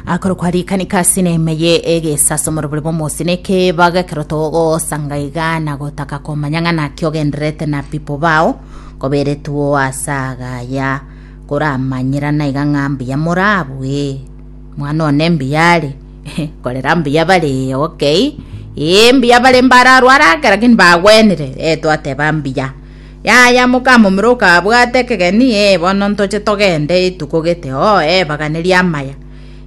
akoro kwarikanika ase neema eye egesasomoro bore bomosi na ekebago ekero togosanga iga na gotaka komanya ng'a naki ogendererete na pipo bao koberetwo ase agaya koramanyerana iga ng'a mbuya morabue mwana one mbuya are korera mbuya bare okay ee mbuya bare mbararware ake lakini bagwenire ee twateba mbuya Yaya mokamomura okabwate ekegeni, ee, bono ntoche togende, rituko gete, oo, ee, baganeria amaya.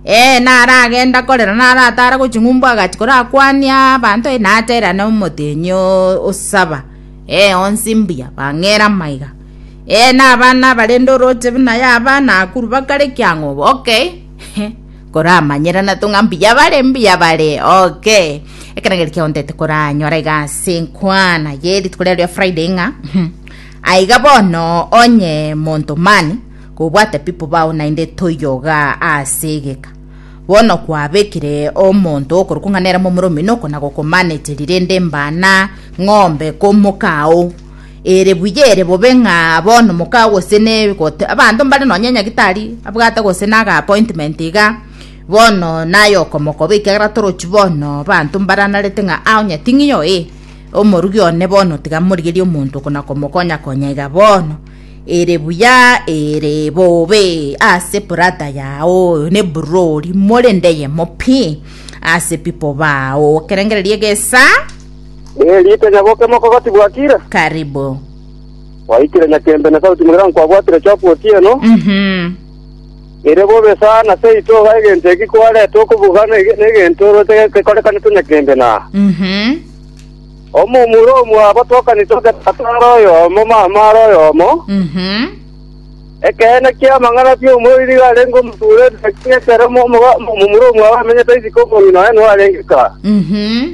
Ee, naragende akorera naratara gochia ng'umbu agachi korakwania abanto, ee, naterane omotenyi osaba, ee, onsi mbuya, bang'era amaiga. Ee, na abana barende oroche buna yaba, nakuru bakare kiang'obo, okay. Koramanyerana to ng'a mbuya bare mbuya bare oke ekero ngeri kiontete koranyora iga ase nkwana ye rituko riario ria friday ng'a mhm, aiga bono onye monto mani kobwate pipo bao naende toyoga ase egeka bono kwabekire omonto okorokwa ng'a nere momura omino oko nagokomaneterire rende mbana ng'ombe komoka ao Ere buya ere bobe ng'a bono moka gose ne gote, abanto mbare nonya nyagitari abwate gose na ag'appointment iga, bono naye okomokoba ekiagera torochi bono abanto mbaranarete ng'a aa onye ting'io ee, omorugi one bono tiga morigerie omonto oko na komokonya konya iga bono. Ere buya ere bobe ase ebrada yao oyo ne eburori, morende eyemo pi ase people bao, okerengereria egesaa. Ee, riita nyabokima okogati bwakire. Karibu. Waikire nyakembe na sauti mogira nkwabwatire chokwa otieno. Mhm. Ere bobe sana ase ito iga egento eki kwarete okobuga na ege- negento oro te- tekorekanete nyakembe na. Mhm. Omomura omwa abatokani toke tatare oyomo mama are oyomo. Mhm. Ekeene kia amang'ana bia omoriri iga arenge omoture ekero mo- omoga- momura omwa abamenyete isiko omong'ina oye nigo arengeka. Mhm.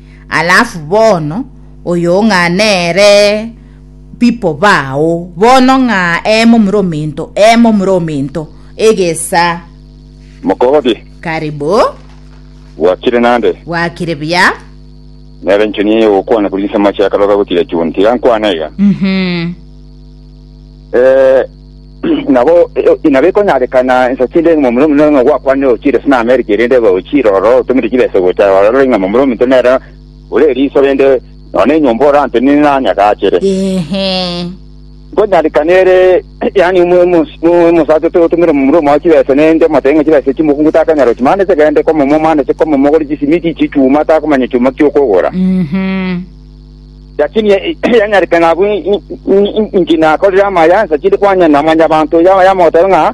Alafu bono oyo ng'a nere pipo bao bono ng'a emo mure ominto emo mure ominto egesa Mokorobi. Karibu. Gwakire nande. Gwakire buya. Nere nchoni eye ogokwana kuri inse amache akaroga gochira chunti. Iga nkwane iga. Mhm. Eh, Nabo inaba ekonyarekana ensa chinde ng'a momura omonene ng'a gwakwanire ogochiire ase n'Amerika, erinde ebe ogochiire ororo otomire chibesa gocha ororo ng'a momura omonto nere ore eriso rende nonya nenyomba ore ante nini nanyagaachere. Ehe. Nkonyarekana ere yaani omosacha otogotomera omomura omwao chibesa nende omotebi ng'a chibesa echi mokungu takanyara gochia mani chegende komomo mani ase komomo ogore chisimiti chi'echuma takomanya echiuma ki'okogora. Mhm. Lakini yanyarete ng'a abwo inki nakorire amaya, nsachete kwanyana na mwanyabanto oyo yamogotabe ng'a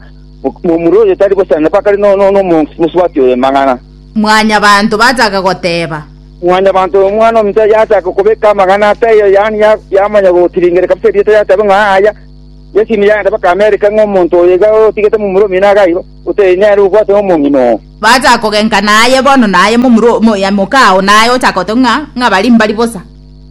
momura oyo tari bosana bakare nomosubati oye amang'ana. Mwanyabanto bachaka goteba. Mwanyabanto oyo omwana ominto yachaka kobeka amang'ana ataiyo, yaani yamanya gotiringera kabisa erieta yatabe ng'a aya Yesu nigo yagenda bakamereka ng'a omonto oyo iga otigete momura omino iga aibo, otari nere obwate omong'ina oo. Bacha kogenka naye bono naye momura omoyamoka ao naye ochaka goteba ng'a ng'a bari mbari bosa.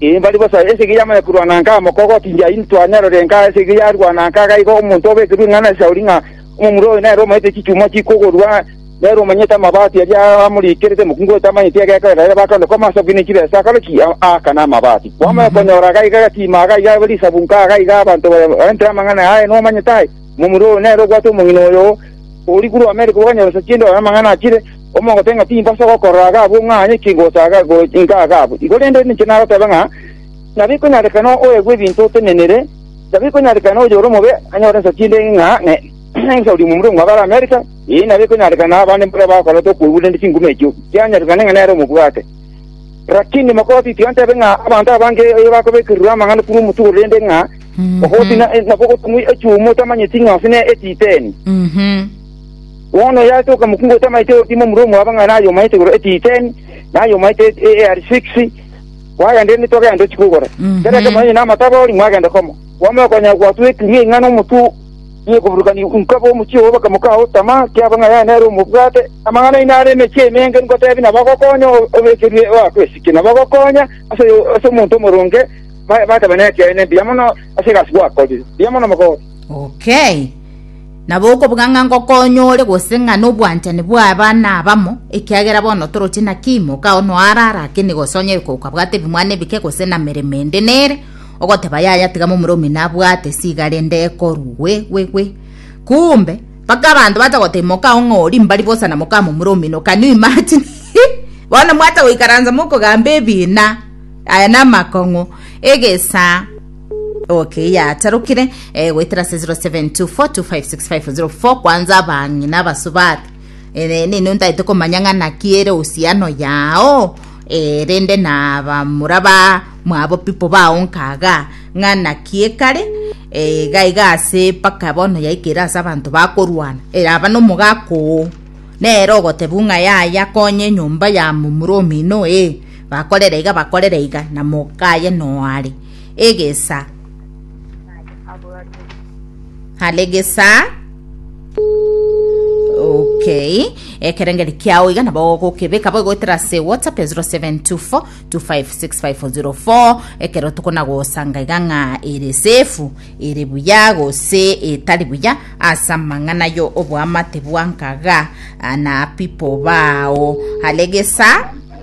Ee, mbari bosa. Esegi yamanya korwana nka amoko gotindia intwe anyarore nka esegi yarwana nka iga igo omonto obekerwe ing'ana ase Sauli ng'a omomura oyo nere omanyete chichuma chikogorwa, nere omanyete amabaati aria amoriikerete mokungu oyo tamanyeti egekorera ere bakande koma ase bwino inki besa akore ki? Aakane amabaati. Kwamanya konyora iga iga egatiima iga iga risabu nka iga iga abanto barentere amang'ana aya nomanyete aye, omomura oyo nere obwate omong'ina oyo, Ori korwa Amerika oganyoresa chiende oyo amang'ana achire, omogote ng'a timba ase ogokorora iga abwo ng'a aye ki gocha iga iga abwo. Igo rende ninche nagoteba ng'a nabo ikonyarekana oegwe ebinto otenenere, nabo ikonyarekana oyore omobe anyore ensa chiende ng'a ensa oria omobe omwabe are Amerika, ee, nabo ikonyarekana abande mboria bakorete okoigwa rende chinguma echio chianyarekane ng'a nere omobwate. Rakini mokoti tibantebe ng'a abanto abange bakobekererwa amang'ana korwa omotibo rende ng'a Ogosi na- nabo ogotumwa echuuma otamanyeti ng'a ase ne etiteni. Mhm. Bono oyo ase okamokungu otamanyeti ogokima omura omwabo ng'a naye omanyete igoro etiteni, naye omanyete et- e- eari six, kwagenda erinde twagenda tochi kogora. Mhm. Kera ekemo onye namatabori mwagenda komo. Kwama okonyora gwatweti ng'a ing'ana omotwe ye koburukani nkaba omochie obo bakamoka ao tamaa kiaba ng'a yaye nere omobwate. Amang'ana aino are emechie emenge ngotebi nabagokonya o- obekerwe oakwesike, nabagokonya ase oyo- ase omonto omoronge, Ba- Bateba nekiaye ne mbuya mono ase egasi gwakorire. Mbuya mono mogoosi. Okay. Nabo okobuga ng'a ngokonya ore gose ng'a nobwanchani bw'aba nabamo, ekiagera bono toroche naki imoka oo noarara akene gose onye oika okabwate ebimwana ebike gose na meremo ende nere, ogoteba yaya tiga momura omino abwate siga rende ekorwe gwe gwe gwe. Kumbe, mpaka abanto bacha goteba imoka oo ng'a ori mbari bosa na moka momura omino, can you imagine? Bono mwacha goikaransa mokogamba ebina. Aya namakong'u egesaa Okay, yatarukire eh, goetera se 0724256504 kwanza abang'ina abasubati Eh, nini ntaete komanya ng'a naki ere usiano yao Eh, rende na bamura ba mwabo pipo bao nkaga ng'a naki ekare Eh, gaiga ase paka bono yaikere ase abanto bakorwana Eh, aba nomogakoo nere ogotebu ng'a yaya konye nyomba ya momura omino eh, Bakorera iga, bakorera iga, na mokaye noare egesa. Hale gesa. Okay. Ekerengeri kiao iga nabo ogokebeka bo goetera se WhatsApp ya 0724 256504 ekero tukona gosanga iga ng'a ere sefu ere buya gose etari buya asa mang'ana yo obwamate bwankaga ah, na pipo bao. Hale gesa.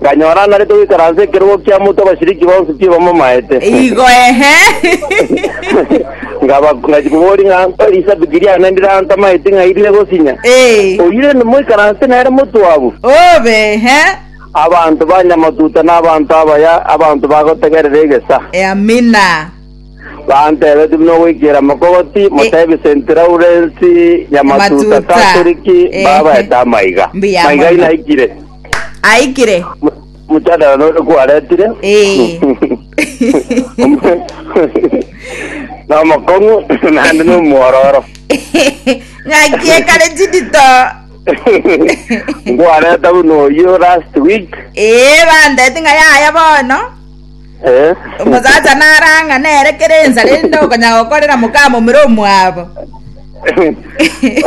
Nkanyora anarete goikara ase ekerogo kia moto abasiriki bonsi tibamamaete. Ngachia koboria ng'a, Elisabeti riane ndirantamaeti ng'ai rire gosinya? Oyio rende moikaranse nere motwabu? Abanto ba nyamatuta na abanto abaya, abanto bagotegerera egesa. Bantebetie buna ogoikera mokogoti, motebie Senti Laurensi nyamatuta Katoliki mbabaete amaiga. Maiga inaikire. aikire Mojadala nore kwaretire. Eh. Na omokong'u naende na omwororo. ng'aki ekare chidito Nkwareta buna oyio last week. ee bandeti ng'a yaya bono Eh, Omosacha narang'ane ere kera ensara erinde okonya gokorera mokama omere omwabo.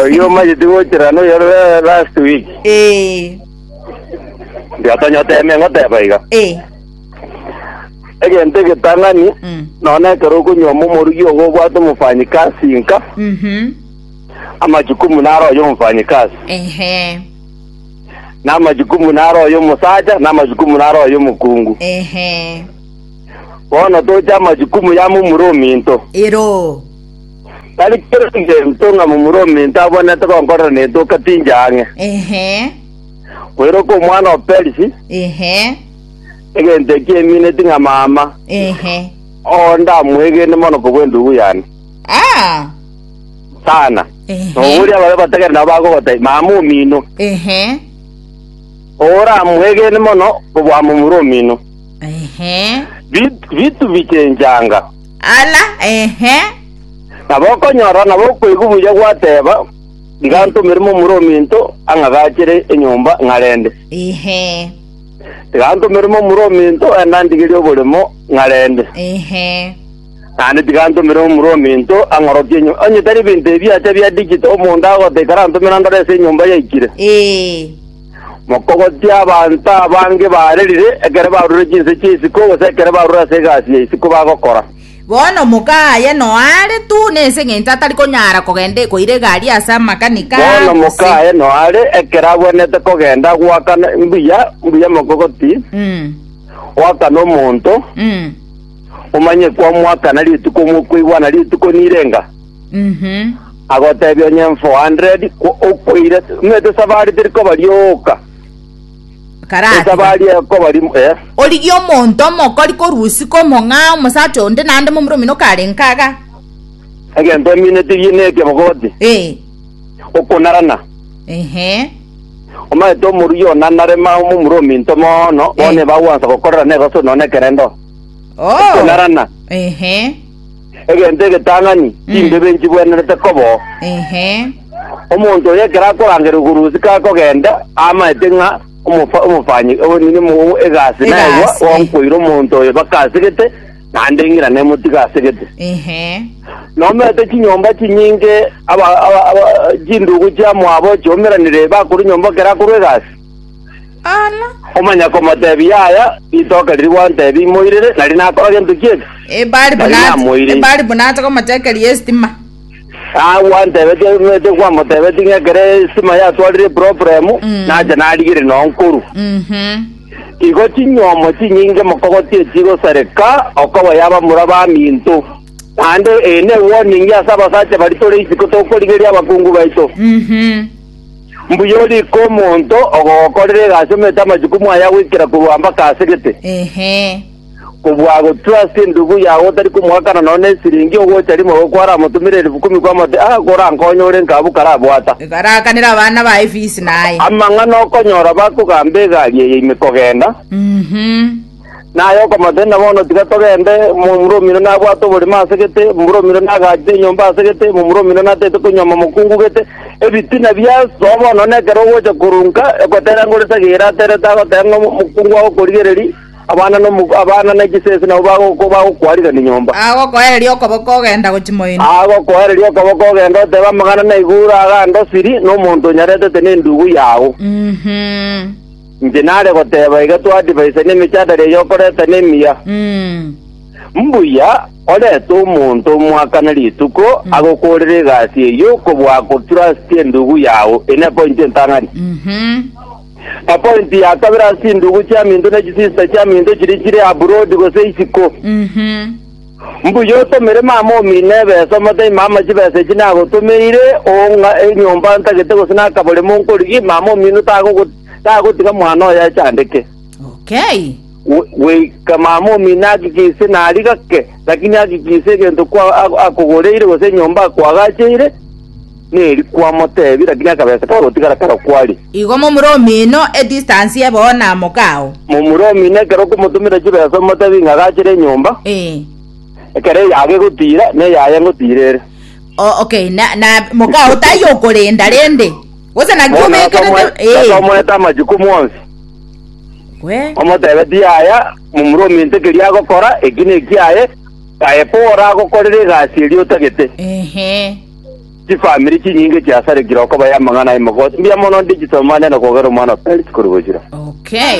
oyio omanyeti gochera noyo la- last week Eh, ndiatonyotemia ngoteba iga eh, egento egetang'ani mm, nona ekero okonyoma omorugi ogo obwate omofanyikasi nka mhm, amachukumu naro oyo omofanyikasi ehe, namachukumu naro oyomosacha, namachukumu naro oyomokungu. Ehe. Bono toche amachukumu ya momura ominto. Ero. Tari kera egento ng'a momura ominto abwenerete gonkorera netoka tinche ang'e. Ehe. Boiroka omwana o Perisi, Ehe. egento eki emineti ng'a mama Ehe. oo ndamwegene mono kobua endugu yane. Ah. sana Ehe. noboria babe bategere nabo bagogota mama omino Ehe. oramwegene mono obwamomura omino Ehe. Bit- bitu bichenchanga Ala. Ehe. nabo okonyora nabo okoigwa buya gwateba igantomere momura ominto ang'agachere enyomba ng'arende Ehe. igantomere momura ominto enandigerie oboremo ng'arende Ehe. Naende tiga ntomere Omorumi into ang'orokie nyomba. Onye tari ebinto ebi acha bia digital, omonto agote ikarantomera ngore ase enyomba yaikire. Ee. Mokogotie abanto abange baarerire ekero barure chinse chi'isiko gose ekero barure ase egasi ya isiko bagokora. Bono omoka aye noare tu nense ng'encho atari konyara kogende koira egari ase amakanika Bono moka gose aye noare ekero abwenerete kogenda agwakana mbuya mbuya mokogotie, Mm. gwakana omonto, Mm. omanye kw'omwaka na rituko omokweigwa na rituko nirenga, agotebia onye 400 kwo okweire omanyete esabari teri koba rioka, Karatiga. esabari ekoba ri eh, origie omonto omokori korusika omong'aa omosacha onde naende momura omino karenge kaga egento ominetirie nekebogoti ee okonarana. ehe Omanyete omoruya onanare mao momura ominto mono, bono Eh. ebagwansa gokorera negoso nonya nekerendo. Oh. Ekonarana. Ehe. Egento egetang'ani, Mm. chimbebe nchibwenerete kobo. Ehe. Omonto oyo ekero akorangera okorusi kakogenda, amaete ng'a omofa- omofanyi o- nini mo- egasi naegwa, Egasi, eh. wankoire omonto oyo baka asegete, naende eng'ira nemotiga asegete. Ehe. nomete chinyomba chinyinge aba- aba- aba- chindugu chiamwabo chiomeranire bakore nyomba kera akorwa egasi Bono. Komanya komotebia aya, ritoke riria gwantebia imoirere, nari nakora gento ki'eke? Eh, bari Nari buna namoirire. eh, bari buna ase komotekeria esitima. Ah, gwantebetie omanyete kwamotebetie ng'a ekero estima yatwarire problem, Mm. nacha narigire noo nkoru. Mhm. Igo chinyomo chinyinge mokogoti echigosareka okoba yaba mura baminto. Naende eye ne warning ase abasacha bari tore isiko tokorigeria abakungu baito. Mhm. Mbuya orike omonto ogogokorera egasi omete amachukumu aye agoikera korwa mpaka ase gete. Kobua agotwa ase endubu yao otari komoakana nonya nesiringi, ogocha rimo igo kwaramotumera elifu ikomi kwamoteba, Aa, korankonye ore nkabu karabwata. Karaakanera abana baye efisi naye. Amang'ana okonyora bakogamba egari eye ime kogenda. Naye okamotenena, Bono tiga togende, momura omino nabwate oborimo ase gete, momura omino nagachire enyomba ase gete, momura omino natete konyuoma mokungu gete, ebitina biasoa bono, na ekero ogocha korunka, egotera ngore sagere aterete agoteba ng'a mokungu agokorigereria, abana na omok- abana ne chisese nabo bagoko- bagokoarigania nyomba. Agokoereria okoboko ogenda gochia moino. Agokoereria okoboko ogende otebe amang'ana naigure agande osiri, na omonto onyaretete nendugu yao. Mhm. Inche nare goteba iga twadivaisa nemechadare eye okoreta nemiya. Mm. Mbuya orete omonto omwaka na rituko agokorere egasi eyio kobua akotrustie endugu yao. Eye nepointi entang'ani. Mhm. Epointi ya kabere ase chindugu chiaminto ne chisister chiaminto chiria chire abroad gose isiko. Mhm. Mbuya otomere mama omino ebesa, omotebi, Mama, chibesa echi nagotomeire, ong'a enyomba ntagete gose nakaborimo nkorigie, mama omino tagogo- tagotiga mwana oye achandeke. Okay. Gwe- Goika mama omino agikise nari gake, lakini agikise egento kwa- a- akogoreire gose enyomba akoagacheire, Neri kwamotebia, lakini akabesa kagotigara karo kwari. Igo momura omino e distance ye bo na moka oo. Momura omino ekero okomotomera chibesa omotebie ng'a gachire enyomba, Eh. ekero eyago egotira, neyaye ngotira ere. O- okay na, na moka oo taiyo okorenda rende gose naki Bono obekerete gakamwe- eh. gakamoeta amachukumu onsi, Gwe. omotebe tiyaya momura ominto ekeria agokora, eki nekiaye, aye ko oragokorere egasi eria otagete. Ehe. Chifamiri chinyinge chiasarekire okobaya amang'ana 'emogosi. Mbuya mono digital manyare kogera omwana o Kristo kori gochira. Okay.